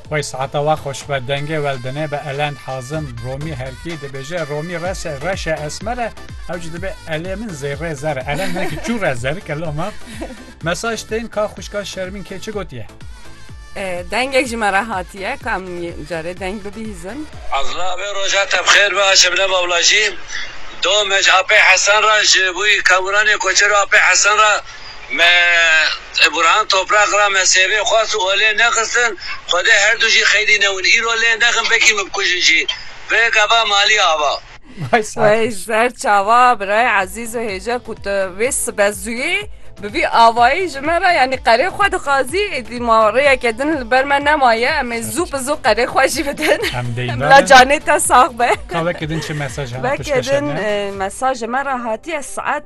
Wey saeta wa xweş be dengê wel dine be elend hazim romî herkî dibêje romî rese reşe esmer e ew jî dibe elê min zêrê zer e elend ne ki çû re zer ke lo ma mesaj tên ka xwişka şermîn kê çi gotiye dengek ji me re hatiye ka em carê deng bibîzin. Azla vê roja te bi xêr be a Şebnem abla jî domec Apê Hesen re ji bo î kewûranê koçero Apê Hesen re Me Burhan Toprak ra me sêvê xwest û olê nexistin. Xwedê her du jî xeylî newin. Îro lê nexin vekî min bikujin jî. Vê gava malî ava. Vay ser. Wey ser çawa birayê ezîz û hêja ku tu vê sibe zûyê bi vî avayî ji me re yanî qerê xwe dixwazî êdî ma rêyeke din li ber me nemaye em ê zû bi zû qerê xwe jî bidin. Em dê Bila navê. canê te sax be. Ka veke din çi mesaj hene Veke piştveşanê? din mesajê me re hatiye saet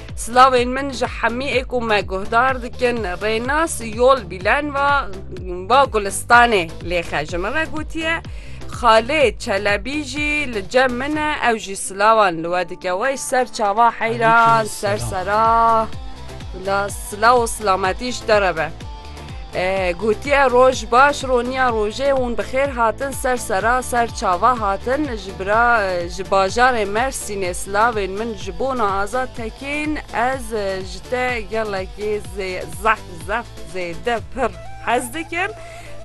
Silavên min ji hemîê ku me guhdar dikin Rênas Yol Bîlen va va Gulistanê lêxe ji min re gotiye Xalê Çelebî jî li cem min e ew jî silavan li we dike wey ser çava heyran ser sera bila silaw û silametî ji te re be. Gotiye roj baş roniya rojê hûn bi xêr hatin ser sera ser çava hatin ji bira ji bajarê Mersînê silavên min ji bona Azad Tekîn ez ji te gelekî zeh zeh zêde pir hez dikim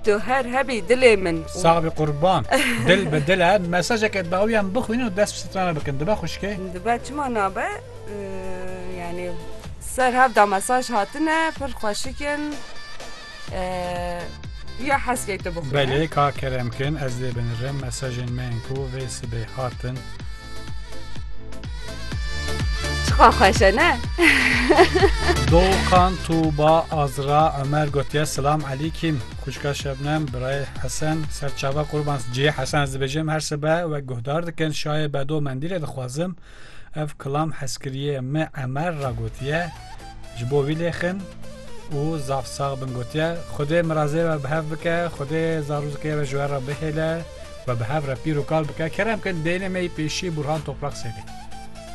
tu her hebî dilê min Sabî qurban dil bi dile mesajeke dawî em bixwînin û dest bi strana bikin dibe xwişkê? Dibe çima nabe? Yanî ser hevda mesaj hatine pir xweşik in. Ya heskê tu bixwîne. Belê ka kerem kin ez dê binirim mesajên me yên ku vê sibê hatin. Çiqa xweş e ne? Doxan Tuba Azra Ömer gotiye Silam Elîkîm Kûçka Şebnem Birayê Hesen Serçava Qurban Ciyê Hesen ez dibêjim her sibe wek guhdar dikin şayê bedo mendîlê dixwazim Ev kilam hezkiriyê me Emer ra gotiye, ji bo wî lê xin û zaf sax bin gotiye, Xwedê mirazê we bi hev bike, Xwedê zarozikê we ji we re bihêle, we bi hev re pîr û kal bike. Kerem kin deynê me yî pêşî Burhan Toprak Sêlê.